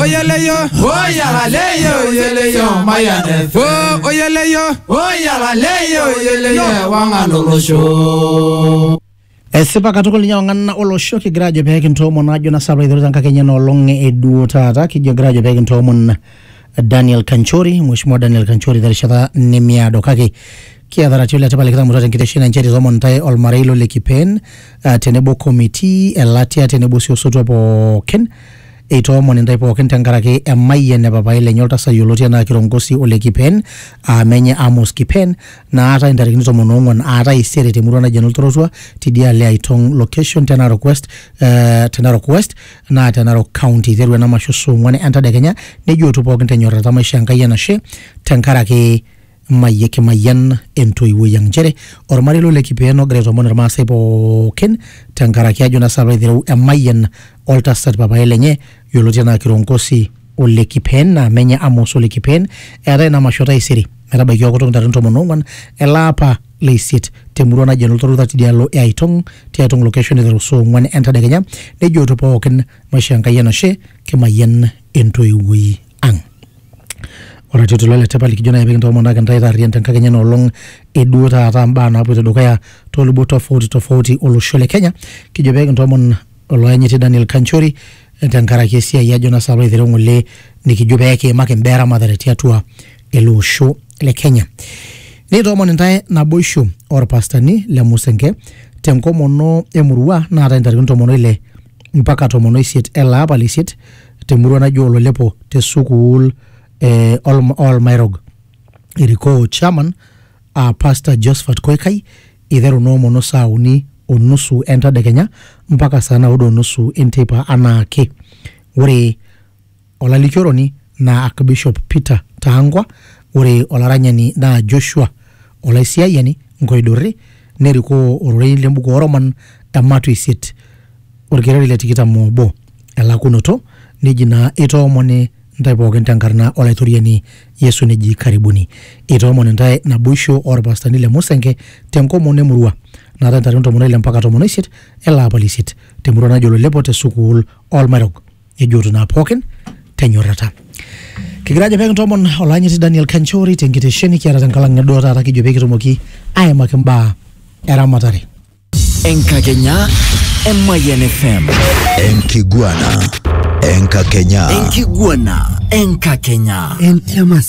o yẹlẹ yọ. ó yàrá lẹ́yìn òyẹlẹ yọ máyà nẹ fẹ́. o o yẹlẹ yọ. ó yàrá lẹ́yìn òyẹlẹ yọ wà ń lòrò ṣó. esipa katukul nyawo nganna olosho kigira ajo pee kintoomon ajo na sabra idhorita nkake enye nolong eduo taata kijo gira ajo pee kintoomon daniel kanchori mheshimiwa daniel kanchori terishata nemiado kake kiata ratio le tipat likitamutua tenkitesheni enche titomon ntae olmarei lo le kipeen ah, tenebo committee elatia tenebo si osotua pookin Eitoomon intae pookin tenkaraki emayian e papai lenye oltasat yioloti anaa Kirongosi ole Kipen aa menye Amos Kipen naatae intarikini tomon oong'uan aa taisere temurua naji enoltorotua tidialo e Aitong location te Narok West, eh, te Narok West naa te Narok County. Eiteru ena masho saa ong'uan entadekenya nejo eotu pookin tenyorrata maisho Enkai enashe tenkaraki Mayian kimayian entoiwuoi ang nchere ormarei lo Lekipeen ogira aitoomon irmaasai pookin tenkaraki ajo naa saapa aitereu emayian oltasat papaai lenye yioloti enaa Kirongosi o Lekipeen naa menye Amos o Lekipeen. Eetae ina masho taisere metabaiki okutuk ntarikini tomon oong'wan ele apa le isiet te murua naji Enoltoruta tidialo e Aitong, ti Aitong location eiteru saa ong'wan entadekenya nejooto pookin maishoo Enkai enashe kimayian entoiwuoi ang Ore atii oltoilo le tipat likijo naaji pee kintomonoki intae taarrian tenkakenya ena olong eduo taata imbaa naapoito dukuya toolubot tofauti tofauti olosho le Kenya kijo pee kintomon oloyanyiti Daniel Kanchori tenkaraki esiai ajo naa sinanu aitereu ng'ole nikijo pee kiimaki imbaa eramatare tiatua ele osho le Kenya. Nikitomon intae naboisho orpastani le Musenke tenkomono emurua naatae intarikini tomon oile mpaka tomon oisiet ele apa le isiet te murua naji Ololepo te sukuul eh, Olm- Olmairog. Erikoo chairman aa Pastor Josephat Koikai iteru noomono saa uni o nusu entadekenya mpaka saa naudo o nusu enteipa anaake. Ore Olalikioroni naa Akbishop Peter Tangwa, ore olaranyani naa Joshua Olaisiayiani Nkoidurri, nerikoo ororei le mbuku oo Roman ematua isiet olkereri le tikitam o obo. Elakunoto, neji naa eitoomoni ntae pooki te nkarna Olaitoriani Yesu neji karibuni. Eitoomoni ntae naboisho oo lpastani le Musenke te nkomono e murua naatae ntarikini tomon o ile mpaka tomon o isiet ele apa le isiet te murua naji Ololepo te sukuul oo lmairrog. nejoto naa pookin tenyorrata kigira ajo pekintomon olanyiti Daniel Kanchori tenkitesheni kiata tenkalang neduo taata kijo pekitumoki aimaki mbaa eramatare Enkakenya Emayian FM. Enkiguana Enkakenya. Enkiguana Enkakenya. Entiamas.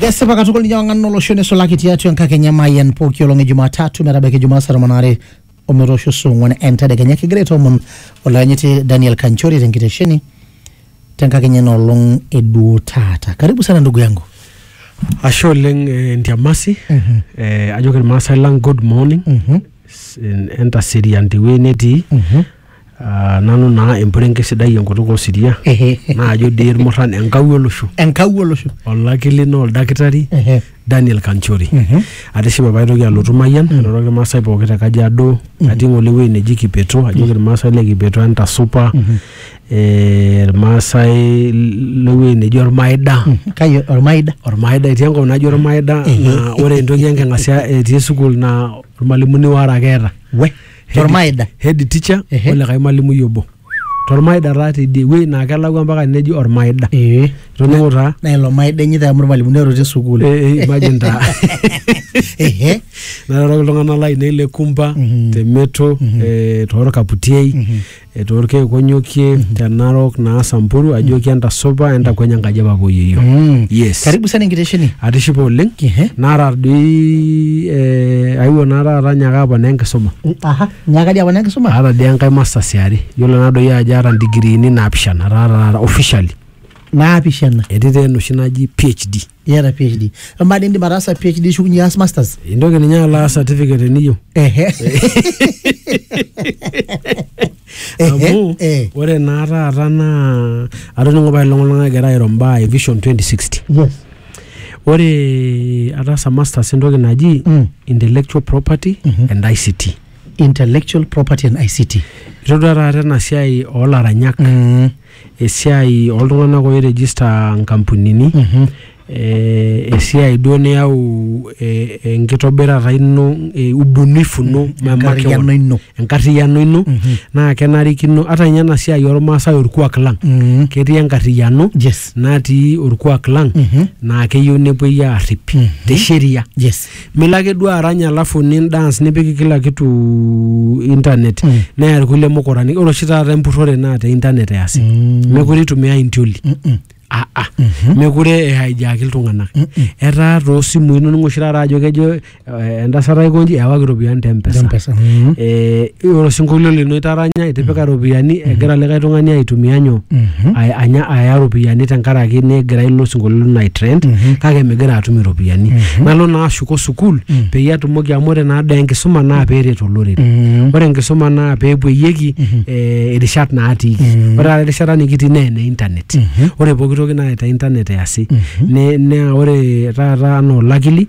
Kesipa katukul ninye wang'an olosho neisulaki tiatua enkakenya Mayian pooki olong e Jumatatu metabaiki Jumaa saa tomon aare ometoosho saa ong'wan entedekenya kigira aitoomon olayanyiti Daniel Kanchori tenkitesheni tenkakenya ina olong e duo taata. Karibu sana ndugu yangu. Ashe oleng eh, Ntiamasi Mhm. eh, ajoki irmaasai lang good morning Mhm. S- en- entaserian tewueji netii Mhm. Ah, nanu naa empurenke sidai enkutuk osiria naajo dii irmurran enkau olosho enkau olosho olaki lino oldakitari Ehe. Daniel Kanchori atishipe paitoki alotu Mayian airoroki irmaasai pooki te Kajiado atii ng'ole ewueji neji Kipeto ajoki irmaasai le Kipeto entasupa eh, irmaasai lewueji neji Ormaida kai ormaida Ormaida etii enkop naji Ormaida naa ore entoki enking'asia etii sukuul naa irmalimuni waare ake eeta we Tormaida. head teacher Ehe. olikae malimui obo tormaida taa tidie wuei naa kelakua mpaka neji ormaida ee itoning'o taa na ilo maida enye amu irmalimuni ero te sukuul Eh, eh, imagine taa ehe nairoroki iltung'anak lainei le kumba Mhm. te meto eh, torkaputiei Etaa olkeek onyokie te Narok naa Samburu ajoki entasupa entakweny enkaji e papa o yeyio. Mm. Yes. Karibu sana enkitesheni. Atishipe oleng. Ehe. Naata doi eh, aewuo naa taata nyaaka aponaa enkisuma. Aha, nyaaka dii aponaa enkisuma? Aata dii enkae masters e are. Yiolo naa doi ajo aata ndigiriini naapishana taata taata officially. Naapishana? Etii taa enoshi naji PHD. iyata phd amaa dii indim ataasa phd nishukunye aas masters intoki ninye alo aas certificate teniyieu ehe amu eh. ore naa taata naa atoning'o pae iltung'anak egira airo mbaa e vision 2060 yes ore ataasa masters entoki naji Mm. intellectual property Mhm. and ict intellectual property and ict itodua taata ena siai oolaranyak mm. esiai oltung'anak oirejista nkampunini mm-hmm. eh, esiai duo niyau eh, enkitobirata ino eh, ubunifu no mm-hmm. enkarriyiano ino enkarriyiano ino mm-hmm. naa kenarikino ata ninye ena siai ormaasai orkuak lang ketii enkarriyiano yes. natii orkuak lang naa keyieu nepuoi aarrip te sheria yes. milo ake duo arany alafu ni dance nipik kila kitu internet Mm. neya irkulie mukurani ore oshi taata empurrore naa te internet easi Mm. mekure itumiai intioli Mm-mm. ah, ah. Mhm. mekure ehaijaki iltung'anak Mm-mm. etaa toosimui inoning'o oshi taata ajo kejo eh, entasat aikonji ewaki iropiyiani te mpesa Mpesa. Mm. Eh, ore osinkolio lino itaranya itipika iropiyiani egira likae tung'ani aitumia nyoo Ay- anya aya iropiyiani tenkaraki negira ilo sinkolio lino aitrend kake migira atum iropiyiani nalo naa ashuko sukuul peyie atumoki amu ore naa daa enkisuma naa peeret olorere ore enkisuma naa peepuoyieki eh, irishat naatiiki ore taata erishata nikitii naa ene internet ore pooki toki naa te internet easi Ne- naa ore taata anaa olakili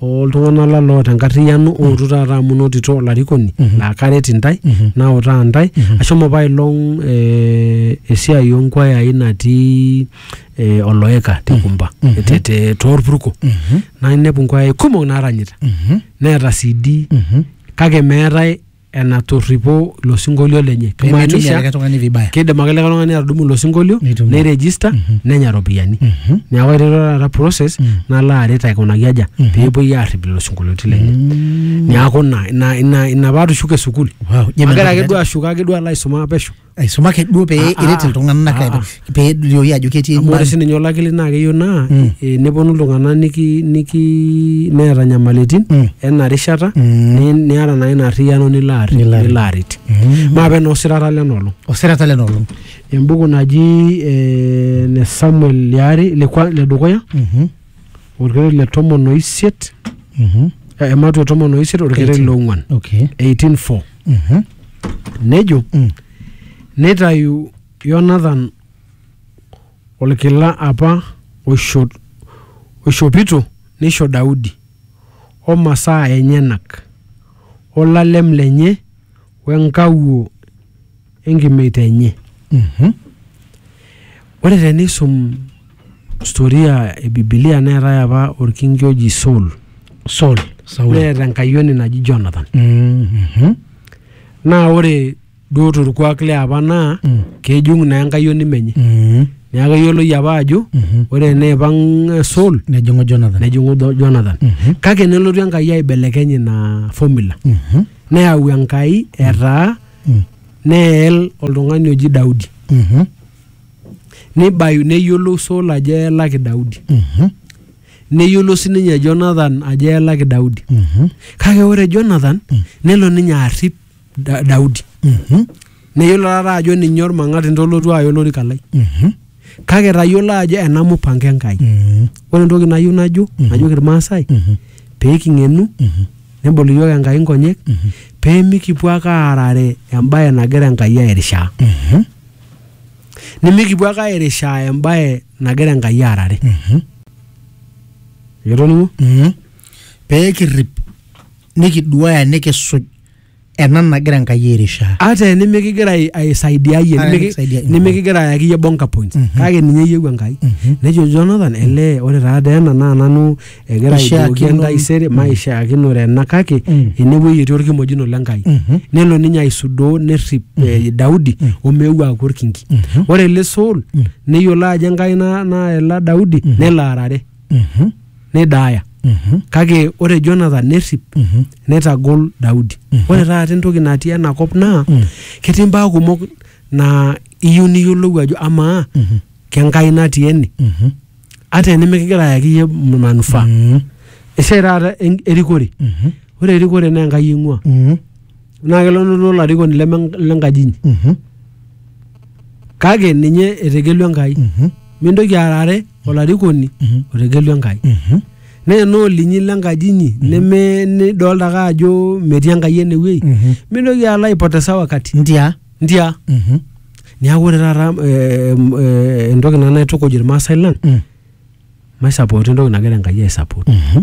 oltung'anak la loota enkarriyiano ootu taata amu inotito olarikoni laa karet intae nautaa intae ashomo apailong eh, esiai onkwayai natii eh, oloeka te kumba te- te- torpurko nainepu nkwayai kumok naaranyita neeta CD kake meetae enatorripo ilo sinkolio lenye Pemeitumia kimaanisha likae tung'ani vibaya. kidim ake likae tung'ani atudumu ilo sinkolio Nitumia. neiregista Mhm. nenya iropiyiani Mhm. neeku aiteru taata process Mm. nalo aret aikunaki aja Mhm. peepuoi aarrip lelo sinkolioitin lenye Mm. neeku ina ina ina ina paatushuko e sukuul Wow, je agira ake meitobira. duo ashuko ake duo alo aisuma pesho aisumaki duo pee Ah, ah. eret iltung'anak Ah, ah. pee elioyu ajo ketii amu ore imbaa- sininye olakili naa keyieu naa Mm. eh, neponu iltung'anak niki niki neeta nyamalitin Mm. ena rishata Mm. ni- niata naa ina arriyiano nilo arri- Nilo arri- nilo aret Mhm. maape naa osirata lena olong osirata lena olong embuku naji eh, ne samuel liare le kwa- le dukuya Mhm. orkeret le tomon oisiet Mhm. eh, ematua tomon oisiet orkeret Eighteen. le ong'uan Okay. 184 Mhm. nejo Mm. neitayu yonathan olkila apa oisho- oishopito neisho daudi o masaa enyenak olalem lenye we nkawuo enkimeita enye. Mhm. Ore tenisum storia e Bibilia neetae apa olkinki oji Saul Saul. Saul. neeta enkayioni naji Jonathan. Mhm. Naa ore duo torkuak liapa naa Mm. kejung naa enkayioni menye. Mhm. Neeku eyioloi apa ajo Mhm. ore eneipang eh, Saul Nejing'u Jonathan. nejing'u Do- Jonathan. Mhm. Kake nelotu Enkai aibelekeny ina formula. Mhm. Neyau Enkai etaa mm. neel oltung'ani oji Daudi mm -hmm. nibayu neyiolou Saul ajo eelaki Daudi mm -hmm. neyiolo sininye Jonathan ajo eelaki Daudi mm -hmm. kake ore Jonathan mm -hmm. nelo ninye arrip da Daudi mm -hmm. neyiolo taata ajo ninye ormang'ati ntolotu aya olorika lai mm -hmm. kake tayiolo ajo ena mupango Enkai. Mhm. Ore entoki nayieu najo, Mhm. najoki Irmaasai, Mhm. pee king'enu, Mhm. nebol iyiook Enkai nkonyek, Mhm. pee mikipuo ake aarare embae nagira Enkai airishaa. Mhm. Nimikipuo ake airishaa embae nagira Enkai aarare. Mhm. Itoning'o? Mhm. pee kirrip nikiduaya nikisuj ena nagira enkai airishaa ata enimikigira ai- aisaidiayie Ata nimiki- nimikisaidiayie. nimikigira ayaki iyie bonga points kake ninye eyieu enkai nejo jonathan ele ore taata ena naa nanu egira aidoki Ishiakino- entaisere maishaakinore ena kake Mm. enewueji etii orkimojino le nkai Mhm. nelo ninye aisudoo nerrip eh, daudi omeu aaku orkinki ore ele saul neyiolo ajo enkai na- naela daudi nelo arare Mhm. nidaaya Mhm. kake ore Jonathan nerrip Mhm. neitagol Daudi. Ore taata entoki natii ena kop naa Mm. ketii mbaa kumok naa iyieu niyiolou ajo amaa Mhm. kenkai natii ene Mhm. ata enimikigira ayaki iyie manufaa. Mhm. Esiai taata en- erikore. Mhm. Ore erikore naa Enkai eing'ua. Mhm. naa kelotu olarikoni leme lenkaji inyi Mhm, kake ninye etegelua enkai mhm, mintoki aarare olarikoni Mhm. otegelua enkai mhm. naa ena olinyi lenkaji inyi neme nidolta ake ajo metii enkai enewueji Mhm. mintoki alo aipotesa wakati ntia ntia Mhm, niaku ore taata eh, em, eh, entoki nanu naitukuj irmaasai lang mm, maisapoti entoki nagira enkai aisapot mhm.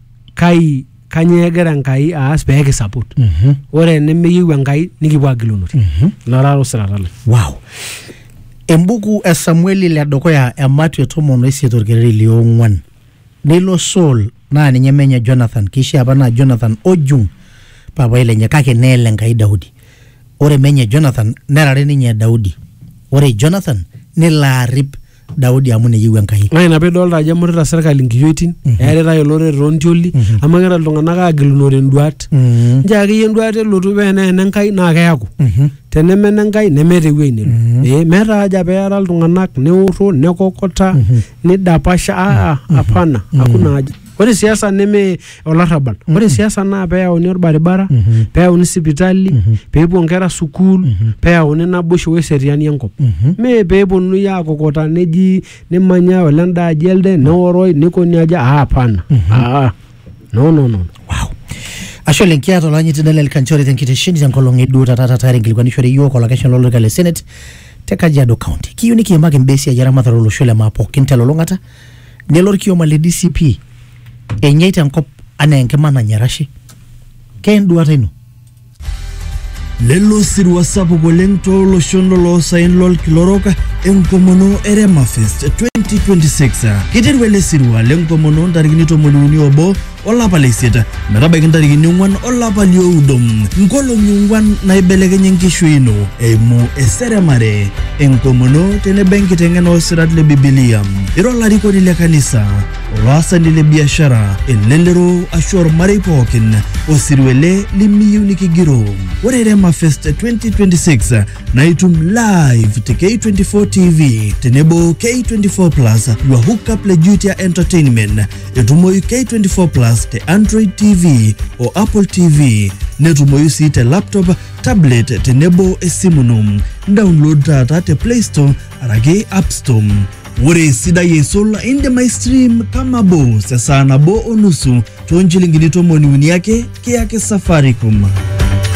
kai kanyoo egira enkai aas pee kisapot Mhm. ore enemeyieu enkai nikipuo agilunore Mhm. ilo taata osirata lang wow embuku e samueli le dukuya e matio tomon oisiet orkereri liong'uan nilo saul naa ninye menye jonathan keishia apa naa jonathan ojung papai lenye kake neele enkai daudi ore menye jonathan nerare ninye daudi ore jonathan nelo arip Daudi amu neyieu Enkai. naa ina pidolta ajo emutita serkali nkiyioitin eeritae olorere toontioli amu egira iltung'anak aagilunore induat Mm. nchoo akeyie enduat elotu pee enaa ene Nkai naa keeku Mhm. teneme ene Nkai nemeeta ewueji nelo Ee, meeta haja pee eara iltung'anak neoro nekokota nidapasha aa apana hakuna haja Ore siasa neme olarrabal. Ore siasa naa peyauni orbaribara, peyauni sipitali, pepuo nkera sukuul, peyauni naboisho weseriani enkop. Me peponunui akokota neji nimanya ole enda aji elde, neoroi, nikoni aje, ah hapana. Ah, no no no. Ashe oleng kiata olanyiti Daniel Kanchori tenkitesheni tenkolong eduo taata taata inkilikuanishore iyiook olakeshani lolorika le Senate te Kajiado County. Kiyieu nikiimaki imbaa esiai eramatare olosho le maa pookin telulung'ata Nelo olkioma le DCP enyei tenkop anaa enkima nanya erashe. Ke enduata ino? Lelo osirua sapuk oleng tooloshon loloosaen lolkila orok enkomono e Remafest 2026. Keiteru ele sirua lenkomono ntarikini tomoniuni obo olapa le isiet metabaiki ntarikini ong'uan olapa lioudo nkolong'i ong'uan naibelekenye enkishui ino eimu eseremare enkomono tenebo enkiteng'ena oosirat le bibilia ira olarikoni le kanisa olaasani le biashara elelero ashu ormarei pookin osirua ele limiyieu nikigiroo ore rema fest 2026 naa itum live te k24 tv tenebo k24 plus your hookup le jutia entertainment Etumoyu K24 Plus te Android TV o Apple TV. Netumoyu sii te laptop, tablet tenebo esimu ino. Download taata te Play Store araki App Store. Ore esidai aisul indim aistream kama bos esaa nabo o nusu too nchilingini tomoni uni ake kiyaki Safaricom.